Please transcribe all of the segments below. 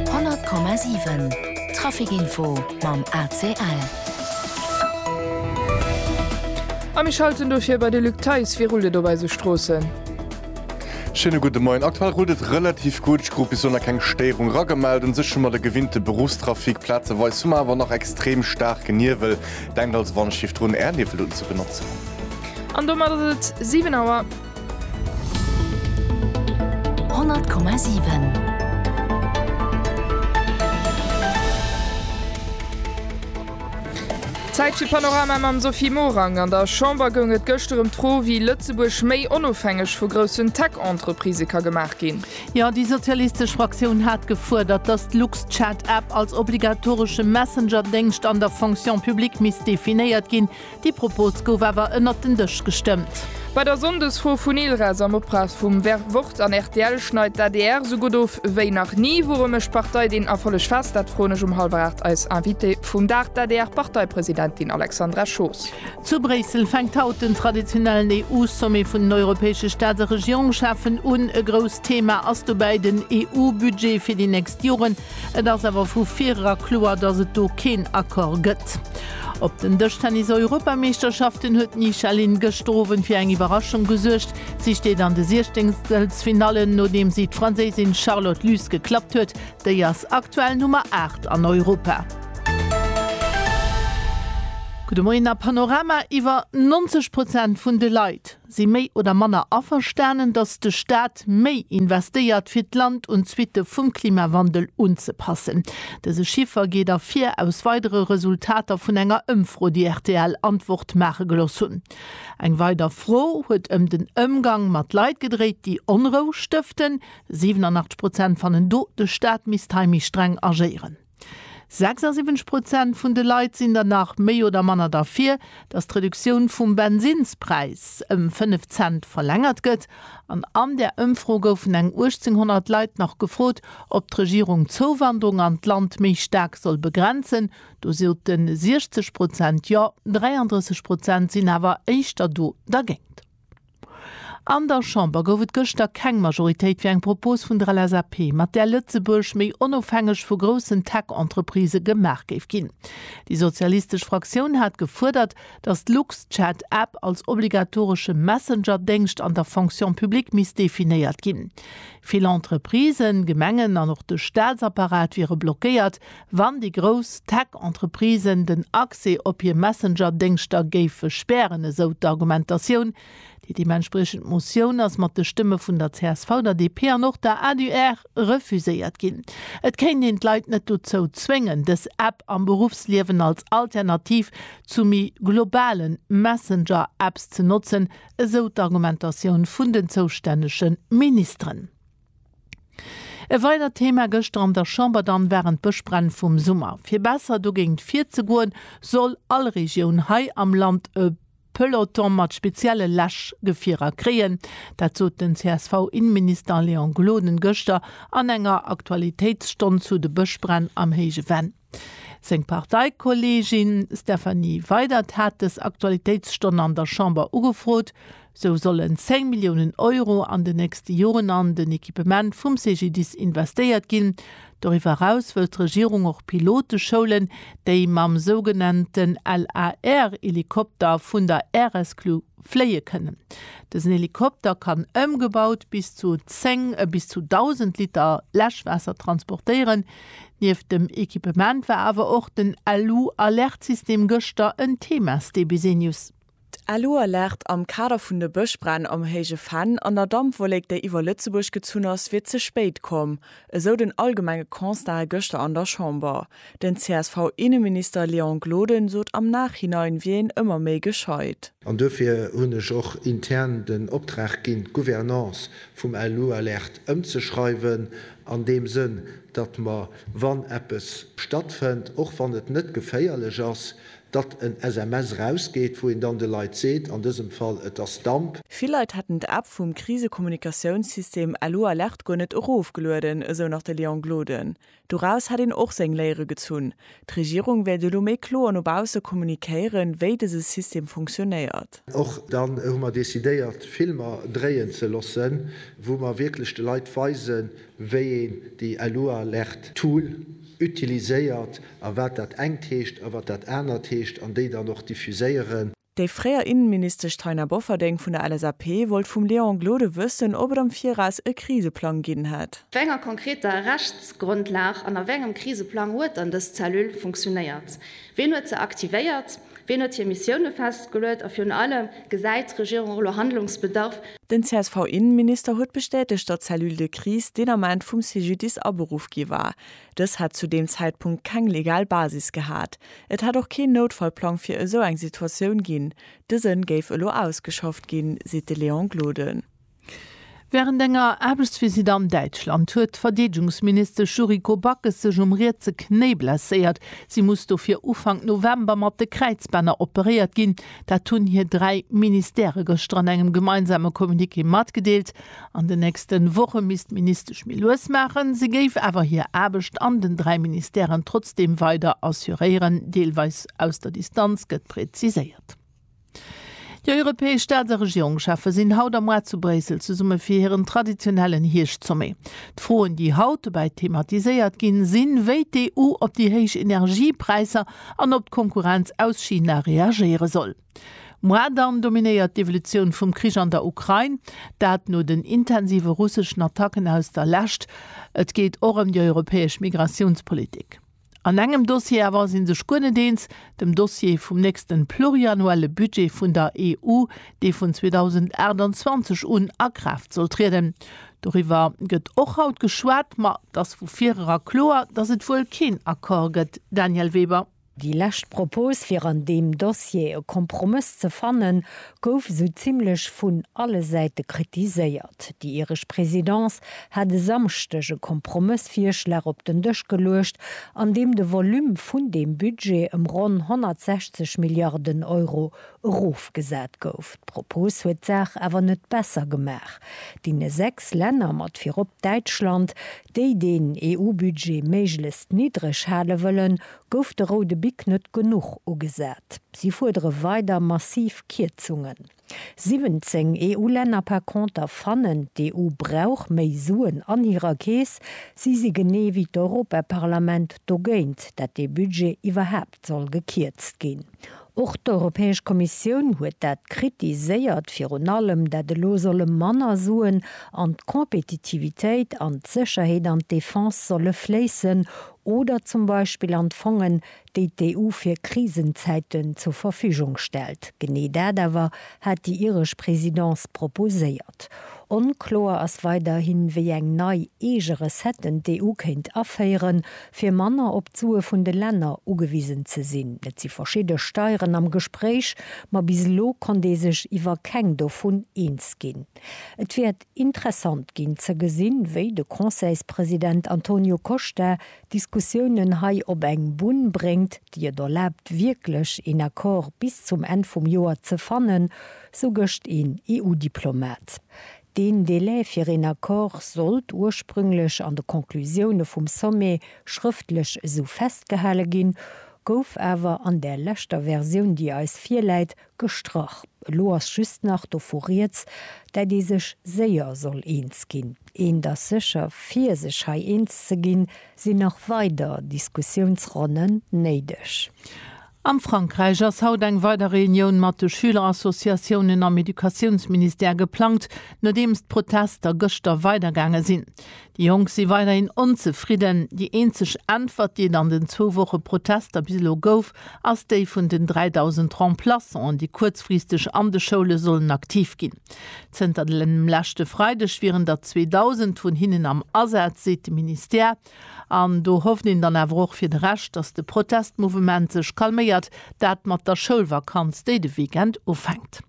100,7 Trafic Info mam ACL. A mir schalten dofir bei de Luc Theis. Wéi rullt et op eise Stroossen? Schéine gudde Moien. Aktuell rullt et relativ gutt. Ech krut bis elo nach keng Stéierung ragemellt. Un sech hu mer de gewinnte Beruffstrafic. Plazeweis hu mer awer nach extrem staarke Niwel. Denkt also Wandschief drun, Är Niwelunn ze benotzen. An domat ass et 7 Auer. Zäit fir Panorama mam Sophie Morang. An der Chamber goung et gëschter ëm d'Fro, wéi Lëtzebuerg méi onofhängeg vu groussen Tech-Entreprisë ka gemaach ginn. Jo, déi sozialistesch Fraktioun hat gefuerdert, datt d'LuxChat-App als obligatoresche Messenger-Déngscht an der Fonction publique misst definéiert ginn. Déi Propos gouf awer ënnert den Dësch gestëmmt. Bei der Sonndesfro vun ILRES am Optrag vum Wort an rtl schneit d'ADR esou gutt of wéi nach ni. Woure mécht d'Partei deen Erfolleg fest? Dat froen ech um hallwer 8 eis Invitée vum Dag, d'ADR-Parteipresidentin Alexandra Schoos. Zu Bréissel fänkt haut den traditionellen EU-Sommet vun den europäesche Staats a Regierungschefen un. E grousst Thema ass dobäi den EU-Budget fir déi nächst Joren. Et ass awer vu virera kloer, datt et do keen Accord gëtt. Op den Dëschtennis-Europameeschterschaften huet d'Nisha Lin gëschter Owend fir eng Iwwerraschung gesuergt. Si steet an de Siechzengstelfinalle nodeem si d'Franséisin Charlotte Luz geklappt huet. Déi ass aktuell Nummer 8 an Europa. Gudde Moien a Panorama iwwer 90 Prozent vun de Leit, si méi oder manner averstanen, datt de Staat méi investéiert, fir d'Land un d'Suitte vum Klimawandel unzepassen. Dëse Chiffer geet ervir aus weidere Resultater vun enger Ëmfro, déi rtl Antwort maache gelooss hunn. Eng weider Fro huet ëm den Ëmgang mat Leit gedréit, déi Onrou stëften. 87 Prozent fannen do, de Staat misst hei méi streng agéieren. 76 Prozent vun de Leit sinn der nach méi oder manner derfir, datt d'Reduktioun vum Bensinnspräis ëm 5 Cent verlängert gëtt. An an där Ëmfro goufen eng 1.800 Leit nach gefrot, ob d'Regierung d'Zouwanderung an d'Land méi staark soll begrenzen. Do sote 60 Prozent Jo, 33 Prozent sinn awer éischter do dergéint. An der Chamber gouf et gëschter keng Majoritéit fir eng Propos vun der LSAP, mat där Lëtzebuerg méi onofhängeg vu groussen Tech-Entreprisë gemaach géif ginn. Déi sozialistesch Fraktioun hat gefuerdert, datt d'Luxchat App als obligatoresche Messenger-Déngscht an der Fonction publique misst definéiert ginn. Vill Entreprisen, Gemengen an och de Staatsapparat wiere blockéiert, Wann déi grouss Tech-Entreprisen den Accès op hir Messenger-Déngschter géife spären, esou d'Argumentatioun. Déi deementspriechend Motioun ass mat de Stëmme vun der csv, der DP an och der adr refuséiert ginn. Et kéint een d'Leit net dozou zwéngen, dës App am Beruffsliewen als Alternativ zu méi globale Messenger-Apps ze notzen, esou d'Argumentatioun vun den zoustännege Ministeren. E weidert Thema gëschter an der Chamber dann waren d'Bëschbränn vum Summer. Fir besser dogéint virzegoen, soll all Regioun hei am Land e Peloton mat spezielle Läschgefierer kréien. Dat sot den CSV-Inneminister Léon Gloden gëschter an enger Aktualitéitsstonn zu de Bëschbränn am Héije Venn. Seng Parteikolleegin Stéphanie Weydert hat dës Aktualitéitsstonn an der Chamber ugefrot. Sou sollen 10 Milliounen Euro an den nächste Joren an den Equipement vum CGDIS investéiert ginn. Doriwwer eraus wëllt d'Regierung och Piloteschoulen, déi mam sougenannten LAR-Helikopter vun der Aeresclub fléie kënnen. Dësen Helikopter kann ëmgebaut bis zu 10 a bis zu 1.000 Liter Läschwaasser transportéieren. Nieft dem Ekipement war awer och den Alu-Alert-System gëschter en Thema, StBsee News. D'Alu-Alert am Kader vun de Bëschbränn am Héije Venn an der Dampwollek, déi iwwer Lëtzebuerg gezunn ass, wier ze spéit komm, esou den allgemenge Constat gëschter an der Chamber. Den CSV-Inneminister Léon Gloden sot am Nachhinein wier een ëmmer méi gescheit. An dofir hunn ech och intern den Optrag ginn, d'Gouvernance vum Alualerte ëmzeschreiwen, an deem Sënn, datt mer, wann eppes stattfënnt, och wann et net geféierlech ass, datt en SMS erausgeet, wou een dann de Leit seet, an dësem Fall, et ass Damp. Vill Leit hätten d'App vum Krisekommunikatiounssystem Alualerte guer net erofgelueden, esou nach de Léon Gloden. Doraus hätt een och seng Léiere gezunn. D'Regierung wéilt elo méi kloer no bausse kommunikéieren, wéi dëse System funktionéiert. Och dann hu mer decidéiert, Filmer dréien ze loossen, wou mer wierklech de Leit weisen, wéi een déi LUAlert-Tool utiliséiert a wat dat engt heescht a wat dat anert heescht, an déi dann och diffuséieren. Déi fréier Innenministesch Taina Bofferding vun der LSAP wollt vum Léon Gloden wëssen, ob et am Viraus e Kriseplang ginn hätt. Op enger konkreter Rechtsgrondlag an a wéi engem Kriseplang huet dann dës Cellule funktionéiert? Wien huet se aktivéiert? Wien huet hir Missioune festgeluet? A virun allem, Gesäit d'Regierung och elo Handlungsbedarf? Den CSV-Innenminister huet bestätegt, datt d'Cellule de crise deen Ament vum CGDIS aberuff gi war. Dës hätt zu deem Zäitpunkt keng legal Basis gehat. Et hätt och keen Noutfallplang fir esou eng Situatioun ginn. Dëse géif elo ausgeschafft ginn, seet de Léon Gloden. Wärend enger Aarbechtsvisitt an Däitschland huet d'Verdeedegungsministesch Yuriko Backes sech um rietse Knéi blesséiert. Si muss dofir Ufank November mat de Kräizbänner operéiert ginn. Dat hunn hir dräi Ministère gëschter an engem gemeinsame Communiqué matgedeelt. An den nächste Woche misst d'Ministesch méi lues maachen. Si géif awer hir Aarbecht an den dräi Ministèren trotzdeem weider assuréieren, deelweis aus der Distanz, gëtt präziséiert. Déi europäesch Staats a Regierungscheffe sinn haut a muar zu Bréissel zesumme fir hiren traditionellen Hierscht-Sommet. D'Froen, déi haut dobäi thematiséiert ginn, sinn, wéi d'EU op déi héich Energiepräisser an op d'Konkurrenz aus China reagéiere soll. Moi, dann dominéiert d'Evolutioun vum Krich an der Ukrain, dat no den intensive russeschen Attacken aus der Lescht. Et geet och ëm déi europäesch Migratiounspolitik. An engem Dossier awer si sech guer net eens, dem Dossier vum nächste pluriannuelle Budget vun der EU, dee vun 2028 un a Kraaft soll trieden. Doriwwer gëtt och haut geschwat, ma et ass vu vireran kloer, datt et wuel keen Accord gëtt. Daniel Weber. Déi lescht Propos fir an deem Dossier e Kompromëss ze fannen, gouf esou zimmlech vun alle Säite kritiséiert. Déi iresch Présidence hat e Samschdeg e Kompromëssvirschlag op den Dësch geluecht, an deem de Volume vun deem Budget ëm ronn 160 Milliarden Euro erofgesat gouf. D'Propos huet d'Saach awer net besser gemaach. Deene sechs Länner, mat virop Däitschland, déi deen EU-Budget méiglechst niddreg hale wëllen, Gouf de roude Bic net genuch ugesat? Si fuerdere weider massiv Kierzungen. 17 EU-Länner par conter fannen, d'EU brauch méi Suen an hirer Keess. Si si genee wéi d'Europaparlament dogéint, dat dee Budget iwwerhaapt soll gekierzt ginn. Och d'Europäesch Kommissioun huet dat kritiséiert, virun allem dat elo solle manner Suen an d'Compétitivitéit, an d'Sécherheet an d'Defense solle fléissen, Oder zum Beispill an d'Fongen, déi d'EU fir Krisenzäiten zur Verfügung stellt. Genee dat awer hat déi iresch Présidence proposéiert. Onkloer ass weiderhin, wéi eng nei eege Recetten d'EU kéint aféieren, fir manner op d'Sue vun de Länner ugewisen ze sinn. Et si verschidde Steieren am Gespréich, ma bis elo konnt ee sech iwwer keng dovun eens ginn. Et wäert Interessant ginn ze gesinn, wéi de Conseilspresident Antonio Costa d'Diskussiounen hei op eng Bunn bréngt, déi et erlaabt wierklech een Accord bis zum Enn vum Joer ze fannen, sou gëscht een EU-Diplomat. Deen Delai fir een Accord sollt ursprünglech an de Conclusioune vum Sommet schrëftlech esou festgehale ginn, gouf awer an där leschter Versioun, déi eis virläit, Gestrach. Elo ass just nach dovu rieds, dat ee sech séier soll eens ginn. Eent ass sécher, fir sech hei eens ze ginn, sinn nach weider Diskussiounsronnen néideg. Am Frankräich ass haut eng weider Reunioun mat de Schülerassociatiounen am Educatiounsministère geplangt, nodeems d'Protester gëschter weidergaange sinn. Déi Jonk si weiderhin onzefridden. Déi eenzeg Äntwert, déi et an den zwou Woche Protester bis elo gouf, ass déi vun den 3.000 Remplaçanten, déi kuerzfristeg an de Schoule sollen aktiv ginn. Zënter dem leschte Freideg wieren der 2.000 vun hinnen am Asaz, seet de Ministère. An do hofft een dann awer och fir de Rescht, datt de Protestmouvement sech calméiert, dat mat der Schoulvakanz, déi de Weekend ufänkt.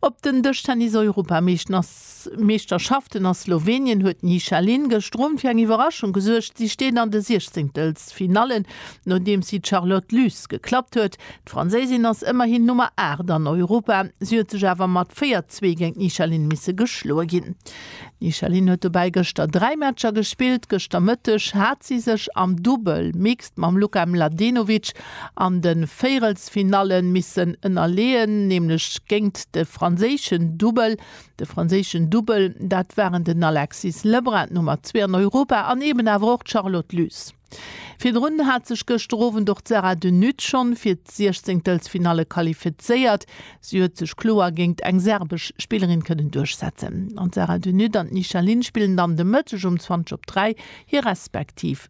Op den Dëschtennis-Europameeschterschaften a Slowenien huet d'Ni Shaleen gëschter Owend fir eng Iwwerraschung gesuergt. Si steet an de Siechzehntelffinallen, nodeems si d'Charlotte Lys geklappt huet. D'Franséisin ass ëmmerhin Nummer 8 an Europa. Si huet sech awer mat 4, 2 géint d'Ni Shaleen misse geschloe ginn. D'Ni Shaleen huet dobäi gëschter dräi Matcher gespillt. Gëschter Mëtteg hat si sech am Dubbel, Mixed, mam Luka Mladenovic an de Véierelsfinalle missen ënnerleeën, nämlech géingt de franséischen Dubbel. De franséischen Dubbel, dat waren den Alexis Lebrun, Nummer zwee an Europa, an eben awer och d'Charlotte Lys. Virdrun hat sech gëschter Owend och d'Sarah de Nutte schonn fir d'Siechzéngtelsfinalle qualifizéiert. Si huet sech kloer géingt eng serbesch Spillerin kënnen duerchsetzen. An d'Sarah de Nutte an d'Nisha Lin spillen dann de Mëtteg um 20 op 3 hir respektiv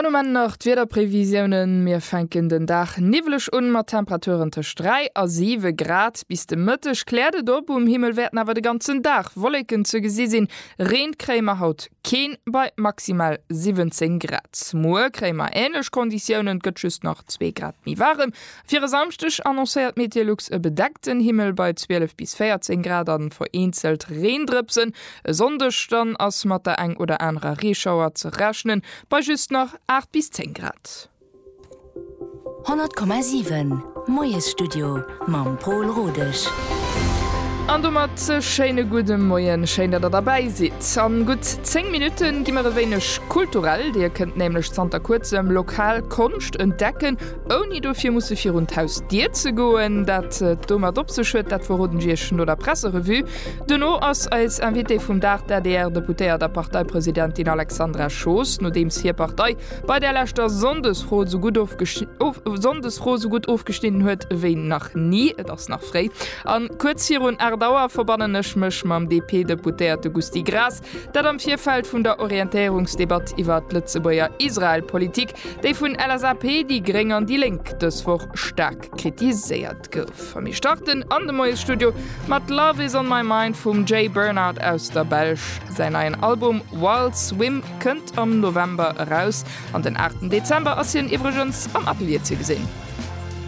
An um Enn nach d'Wiederprevisiounen, Mir fänken den Dag niwweleg un, mat Temperaturen tëscht 3 a 7 Grad. Bis de Mëtteg kläert et op, um Himmel wäerten awer de ganzen Dag Wolleken ze gesi sinn. Reen kréie mer haut keen, bei maximal 17 Grad. Muer kréie mer änlech Konditiounen, et gëtt just nach zwee Grad méi waarem. Fir e Samschdeg annoncéiert Meteolux e bedeckten Himmel bei 12 bis 14 Grad a vereenzelt Reendrëpsen. E Sonndeg dann ass mat der eng oder anerer Reeschauer ze rechnen, bei just nach 8 bis 10 Grad. 100,7 Moiesstudio mam Pol Rodesch. An domat e schéine gudde Moien, schéin dat der derbäi sidd. An gutt 10 Minutten gi mer e wéineg kulturell, dir kënnt nämlech zanter kuerzem lokal Konscht entdecken, Ouni dofir musse virun d'Hausdier ze goen. Dat et domat op sech huet, dat verroden ech Iech no der Presserevue. Duerno ass eis Invitée vum Dag d'ADR-Deputéiert a Parteipresidentin Alexandra Schoos. Nodeems hir Partei bei der leschter Sonndesfro esou gutt ofgesch, Sonndesfro esou gutt ofgeschnidden huet ewéi nach ni, et ass nach fréi, an kuerz virun 8 Auer, verbannen ech mech mam DP-Deputéierte Gusty Graas, Dat am Virfeld vun der Orientéierungsdebatt iwwer d'Lëtzebuerger Israel-Politik, déi vun LSAP, déi Gréng an déi Lénk dës Woch staark kritiséiert gouf. A mir starten an de Moiesstudio mat Love is on my mind vum Jay Bernard aus der Belsch. Säin neien Album Wild Swim kënnt am November eraus an den 8 Dezember ass hien iwwregens am Atelier ze gesinn.